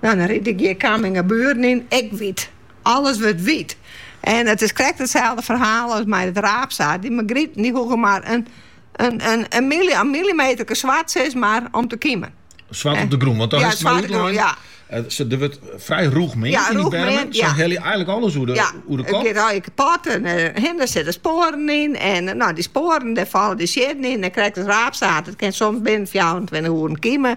Nou, dan ride ik hjir Kammingabuorren yn, ek wyt. Alles wurdt wyt. En it is krekt itselde ferhaal as mei it raapsaad. De margriet dy hoege mar in millimeterke swart, sis mar, om te kymjen. Swart op de grûn, want dan is it mar ja. Eh, ze, der wurdt frij rûch meand yn dy bermen. Ze ja. helje einliks alles oer de, ja, oer de kop. Ja, kapot en uh, dêr sitte spoaren yn. En eh, nou, dy spoaren, dêr falle de siedden yn. En krekt it raapsaad. It kin soms binnen 24 oeren kymje.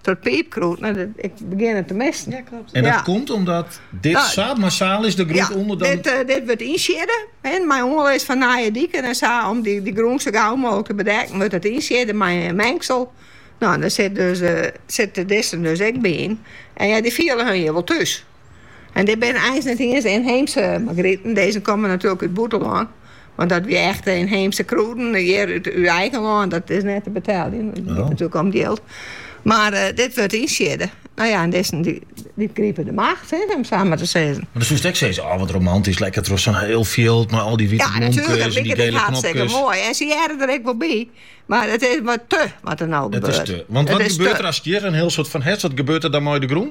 Troch piipkrûd, en ik begjin it te missen. Ja, klopt. En dat Ja. komt omdat dit Nou, sa massaal is, de grûn Ja, ûnder dan... dit, eh, dit wurdt ynsiedde hè, mei oanlis fan nije diken en sa. Om dy, dy grûn sa gau mooglik te bedekken, wurdt it ynsiedde mei in mengsel. Nou, en dêr sit dus, eh, sitte dizze dus ek by yn. En ja, dy fiele har hjir wol thús. En dit binne eins net iens de ynheemse margriten, dizze komme natuerlik út it bûtenlân, want dat wie echt de ynheemse krûden hjir út eigen lân, dat is net te beteljen, it giet natuerlik om jild. Mar dit wurdt ynsiedde. No ja, en dizzen dy gripe de macht, hè, om it sa mar te sizzen. Mar dan soest ek sizze, oh wat romantysk, lekker troch sa'n hiel fjild mei al dy wite Ja, bloemkes natuerlik, en dat dy liket ek gele hartstikke knopkes. moai. En se hearre der ek wol by, mar it is wat te wat der no Dat is gebeurt. te. Want It wat is gebeurt te. der as it hjir in hiel soad fan hest? Wat gebeurt der dan mei de grûn?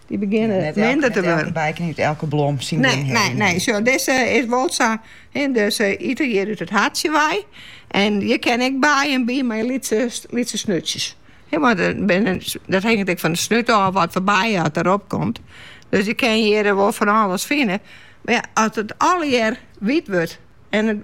Dy begjinne minder te wurden. Net elke by kin út elke blom syn ding hawwe. Nee, nee, nee. Dizze is wol sa, ynsekten ite hjir út it hartsje wei. En hjir kinne ek bijen by, mar lytse snutsjes. Want dat hinget ek fan de snut ôf wat foar bij at derop komt. Dus je kinne hjir wol fan alles fine. Mar ja, as it allegear wyt wurdt en